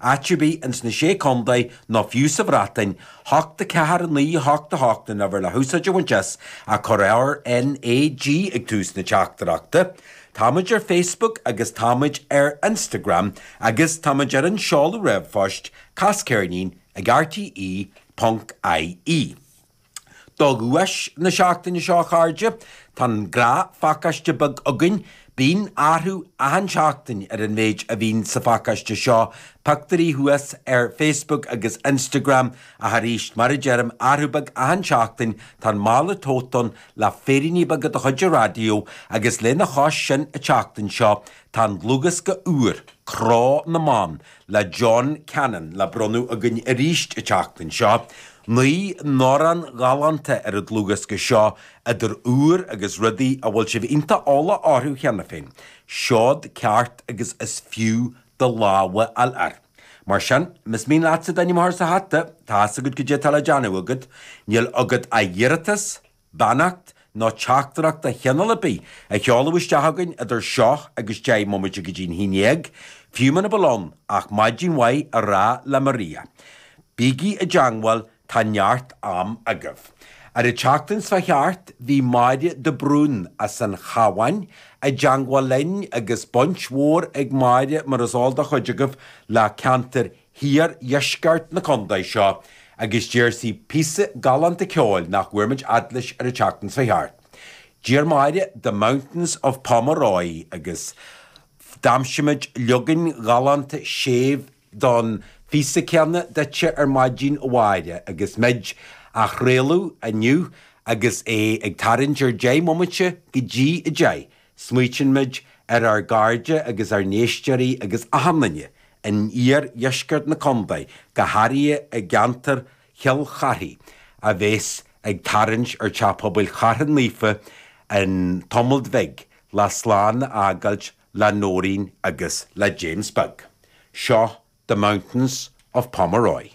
Áit ar bith ins na Sé Contae nó fiú sa Bhreatain, hocht a ceathair a naoi a hocht a hocht an uimhir le húsáid a bhaint as, ach cuir RnaG ag tús na teachtaireachta. Táimid ar Facebook agus táimid ar Instagram agus táimid ar an seoladh ríomhphoist, Cas ceirnín ag rte. ie. Do dhuais na seachtaine seo, a chairde, tá an gnáth-phacáiste beag againn. Bíonn athrú achan seachtain ar an mhéid a bhíonn sa phacáiste seo, pioctúirí thuas ar Facebook agus Instagram, ach aríst, mar a deirim, athrú beag achan seachtain, tá an mála tote ann le féiríní beaga de chuid an raidió, agus lena chois sin, an tseachtain seo, tá an dlúthdhiosca úr, Cró na mBan, le John Cannon le bronnadh againn aríst an tseachtain seo, naoi n-amhrán galánta ar an dlúthdhiosca seo, idir úr agus rudaí a bhfuil sibh iontach eolach orthu cheana féin, seod ceart agus is fiú do lámh a fháil air. Mar sin, más mian leatsa d'ainm a chur sa hata, tá's agat cad é atá le déanamh agat, níl agat ach d'iarratas, beannacht nó teachtaireacht de chineál ar bith a sheoladh isteach againn idir seo agus deich mbomaite go dtí'n haon dhéag, fiú muna bhfuil ann ach maidin mhaith a rá le Maria. Bígí i dteangmháil, tá neart am agaibh. Ar an tseachtain seo thart, bhí Máire de Brún, as an Chabhán, i dteangmháil linn, agus baint mhór ag Máire, mar is eol do chuid agaibh, le ceantar iardheisceart na condae seo agus d'iarr sí píosa galánta ceoil nach bhfuair muid fhad leis ar an tseachtain seo thart. D'iarr Máire The Mountains of Pomeroy agus d'aimsigh muid leagan galánta séimh don phíosa céanna duitse ar maidin a Mháire agus muid á chraoladh inniu agus é ag tarraingt ar deich mbomaite go dtí a deich Smaoitíonn muid ar ár gcairde agus ár n-éisteoirí agus achan duine in iardheisceart na condae, go háirithe i gceantar Chill Charthaigh, a bhéas ag tarraingt ar Teach Pobail Chartha Naofa cionn tamailt bhig le slán a fhágáilt le Noreen agus le James Beag. Seo The Mountains of Pomeroy.